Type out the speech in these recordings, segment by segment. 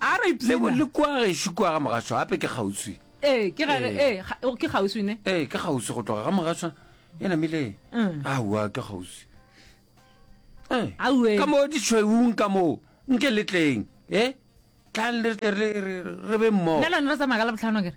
a re le go le kwa gešo kwa ga mogasho gape ke kgauswi ee ke ga Ee. ee ga- o- ke kgauswi ne ee ke kgauswi go tloga ga mogasho e namile Mm. aowa ke kgauswi Ee. Aowe. ka moo ditšhweung ka moo nke letleng e tlang le tle re- re re be mmogo nna lone re tsamaya ka labotlhano kere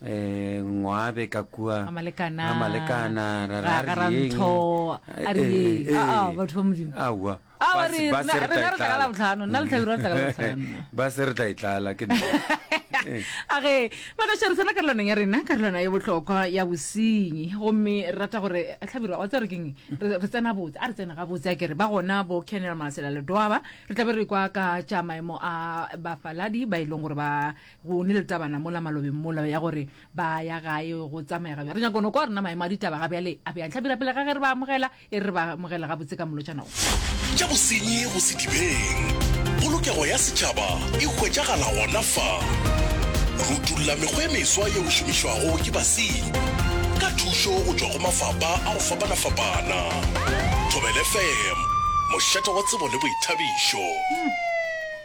Eh, ngwabe ka kua Ga malekana. Ga malekana, ra ra Ga- ga ra rieng? ntho, a re Eh, eng? eh, Ah, ah, eh. batho ba Modimo. Aowa. Ah, wa Ba se- re- ba rena- se re tla rena re tla ka etlala. Labohlano, nna le Tlhabiro re tla ka Labohlano. ba se re tla e tlala ke nna. Eh. a ge magaša re tsena karolwaneng ya rena karolwana ya bohlokwa ya bosenyi gomme re rata gore tlhabira wa tse re keng re re tsena botse a re tsena ga botse a kere ba gona bo canel masela ledoaba re tlabe re kwa ka tša maemo a bafaladi ba e leng gore ba Go ne le tabana mola malobeng mola ya gore ba ya gae go tsamaya gabjale. Re nyaka go no kwa rena maemo a ditaba ga bjale a bjang. Hlabira pele ga ge re ba amogela, e re re ba amogela gabotse ka molotšana wo. Tša bosenyi go se dibeng. Polokego ya setšhaba e hwetšagala gona fa. Rutulla mekgwa e meswa yeo e šomišwago ke basenyi ka thušo go tšwa go mafapa a go fapana-fapana. Thobela FM, mošate wa tsebo le boithabišo.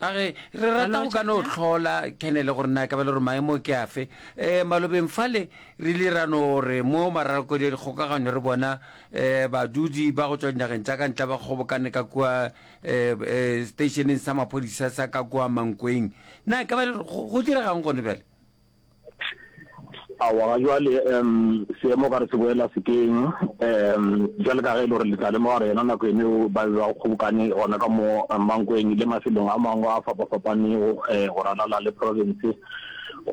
a re re rata go ka no tlhola kenele gore na ka ba le gore maemo ke afe um malobeng fale re ile ra no re mo maralokodi ya dikgokaganyo re bona um badudi ba go tswa dinageng tsa ka ntla ba kgobokane ka kua um stationeng sa maphodisa sa ka kua mankweng na ka ba le go diregang gone bjale Aowa, ga jwale um seemo ka re se boela sekeng um jwale ka ge e le gore le tla lemoga gore yona nako eno ba be ba kgobokane gona ka mo Mankweng le mafelong a mangwe a fapafapanego um eh, go ralala le province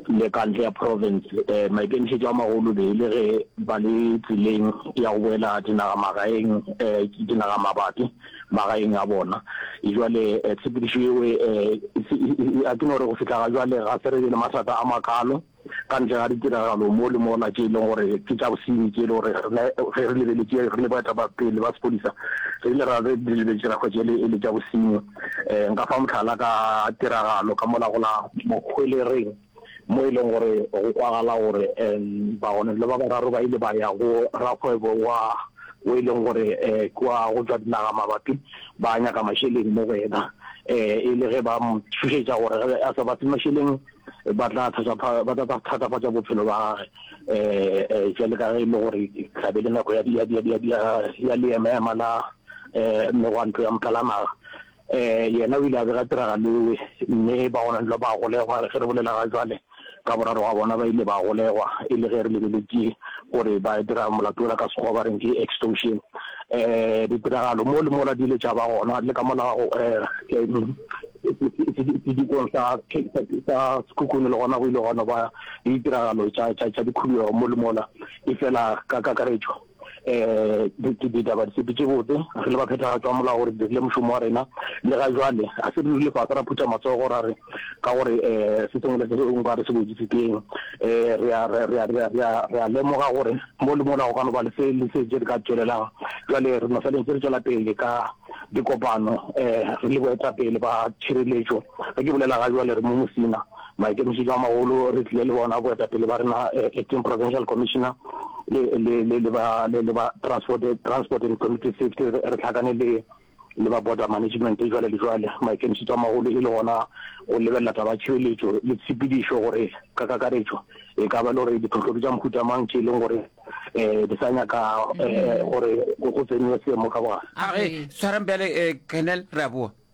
le ka ntle ya province. Um maikemišetšo a magolo be e le ge ba le tseleng ya go boela dinagamagaeng um eh, dinagamabati. magaeng a bona e jwale eh, tshepedišo yeo eh, eh, a ke no gore go fitlha ga jwale ga se re be le mathata a makalo ka ntle ga ditiragalo mo le mona tse e leng gore ke tša bosenyi tse e le gore ge re lebeletse re le baeta ba pele ba sepodisa re ile ra re lebeletse rakgo tse e le tša bosenyi um nka fa motlhala ka tiragalo ka mola gola mokgwelereng mo e leng gore go kwagala gore um bagoneng le ba bararo ba ile ba ya go rakgwebo wa o e leng gore um kwa go tswa dinaga mabapi ba nyaka mašeleng mo go ena um e le ge ba mo tshošetša gore ge a sa ba fe mašeleng ba tla thatafatša bophelo ba gage um jale ka ge e le gore tlabe le nako ya leemaema la um megwanto ya motlalanaga Ee, yena o ile a bega tiragalo ewe, mme ba gona dula ba golegwa. Ge re bolela ga jwale, ka boraro ga bona ba ile ba golegwa, e le ge re lebeletše gore ba dira molato wola ka Sekgowa ba reng ke extortion. Ee, ditiragalo mo le mola di ile tša ba gona le ka mola ga go sedikong sa sa Sekhukhune le gona go ile gwa no ba le ditiragalo tša tša tša dikhuduego mo le mola, efela ka kakaretšo, um ke ditaba di sepetše botse re le baphethagatšo wa molao gore dirile mošomo wa rena le ga jwale ga se re rile fase ra phutha matsogo ra re ka gore um se sengwe le se sengwe ka re se boditse teng um re a lemoga gore mo le mola go ka no ba le se le se je re ka tswelelang jwale re no feleng tse re tswela pele ka dikopano um re le boetapele ba tšhireletšo ge ke bolela ga jwale re mo mosina Maikemišetšo a magolo re tlile le bona boetapele ba rena, Acting Provincial Commissioner le, le, le, le ba, le, le ba Transport, Transport and Community Safety, re, re hlakane le, le ba Border Management jwale le jwale. Maikemišetšo a magolo e le gona go lebelela taba ya tšhireletšo le tshepedišo gore ka kakaretšo e ka ba le gore diphohlo ke tša mohuta mang tše e leng gore um di sa nyaka um gore go tsenwe seemo ka bogare. A re tshwarang bjale, eh, Colonel, re a boa.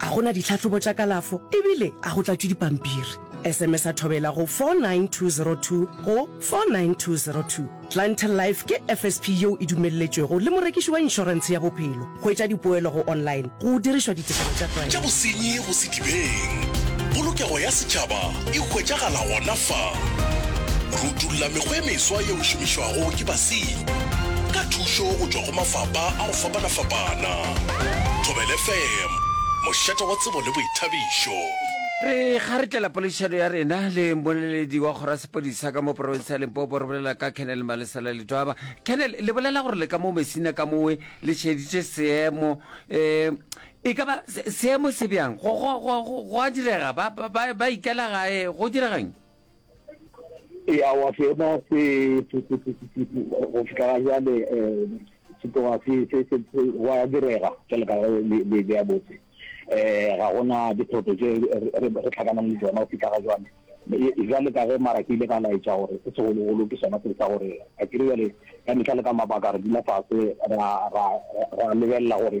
A go na ditlhahlobo tša kalafo ebile a go tlatšwe dipampiri? SMS-a thobela go 49202 go 49202. Clientele Life ke FSP yeo e dumelletšwego le morekiši wa inšorentshe ya bophelo. Hwetša dipoelo go online go dirišwa ditekanyo tša tlwaelo. Tša bosenyi go sedibeng. Polokego ya setšhaba e hwetšagala gona fa. Re utolla mekgwa e meswa yeo e šomišwago ke basenyi ka thušo go tšwa go mafapha a go fapana-fapana. Thobela FM, mošate wa tsebo le boithabišo. Re ga re tlela poledišano ya rena le mmoleledi wa kgoro ya sepodisa ka mo porofense ya Limpopo. Re bolela ka Colonel Malesela Letwaba. Colonel, le bolela gore le ka mo Messina ka mowe le šeditše seemo um e ka ba seemo se bjang go a direga ba ikela gae go dirageng? ee aowa seema se go fitlha ga jale um se tloga wa direga jale ka le ya botse um ga gona diphoto tse re tlhakanang le tsona go fitlha ga jale jale ka ge mara ke ile ka laetša gore se segologolo ke sona se sa gore a kere jale ka metlha le ka mabaka re dula fase ra lebelela gore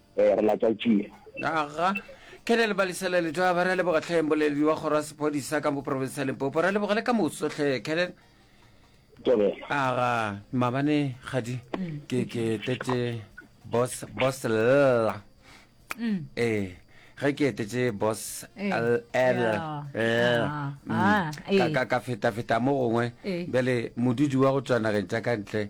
Ee, re la tša tšea. Aga, Kelly le balisa la Letaba, ra leboga tlhe mmboleledi wa kgoro ya sephodisa ka mo province ya Limpopo, ra leboga le ka moso tlhe Kelly. Tobela. Aga, mabane gadi ke ke tete boss boss lla. Eh, ge ke etetse boss Eh, L L ya, L. ah, Mm. ah, Ka eh. ka ka feta feta mo gongwe Eh. bjale modudi wa go tswa nageng tša ka ntle